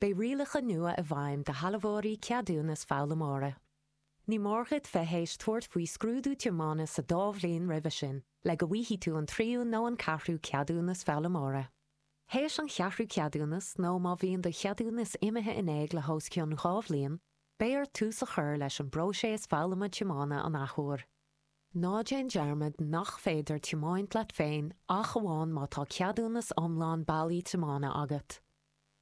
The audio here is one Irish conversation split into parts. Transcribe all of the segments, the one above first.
Beidh rialacha nua i bhfeidhm do shealbhóirí ceadúnas foghlaimeora. Ní mór dhuit bheith théis tabhairt faoi scrúdú tiomána sa dá bhliain roimhe sin le go bhfaighidh tú an tríú nó an ceathrú ceadúnas foghlaimeora. Théis an cheathrú ceadúnas nó má bhíonn do cheadúnas imithe in éag le hós cionn dhá bhliain, beidh ort tús a chur leis an bpróiseas foghlama tiomána an athuair. Ná déan dearmad nach féidir tiomáint leat féin ach amháin má tá ceadúnas iomlán bailí tiomána agat.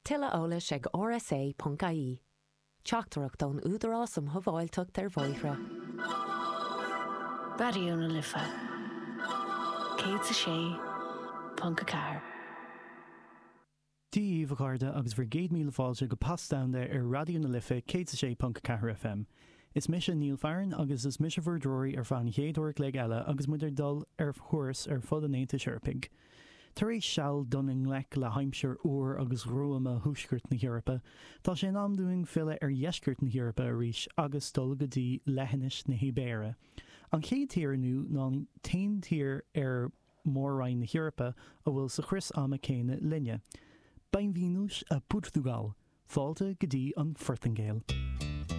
Tuilleadh eolais ag rsa ponc ie. Teachtaireacht ón Údarás um Shábháilteacht ar Bhóithre. Raidió na Life 106.4. Dia daoibh a chairde agus bhur gcéad míle fáilte go Pas Down There ar Raidió na Life 106.4 FM. Is mise Neil Farren agus is mise bhur dtreoraí ar feadh an chéad uair a chloig eile agus muid ag dul ar thuras ar fud an Aontais Eorpaigh. Tar éis seal ag dul i ngleic le haimsir fhuar agus ghruama Thuaisceart na hEorpa, tá sé in am dúinn filleadh ar Dheisceart na hEorpa arís agus dul go dtí Leithinis na hIbéire, an chéad tír inniu ná an t-aon tír ar Mhór-Roinn na hEorpa a bhfuil sa chrios ama céanna linne. Bem-vindos a Portugal! Fáilte go dtí an Phortaingéil!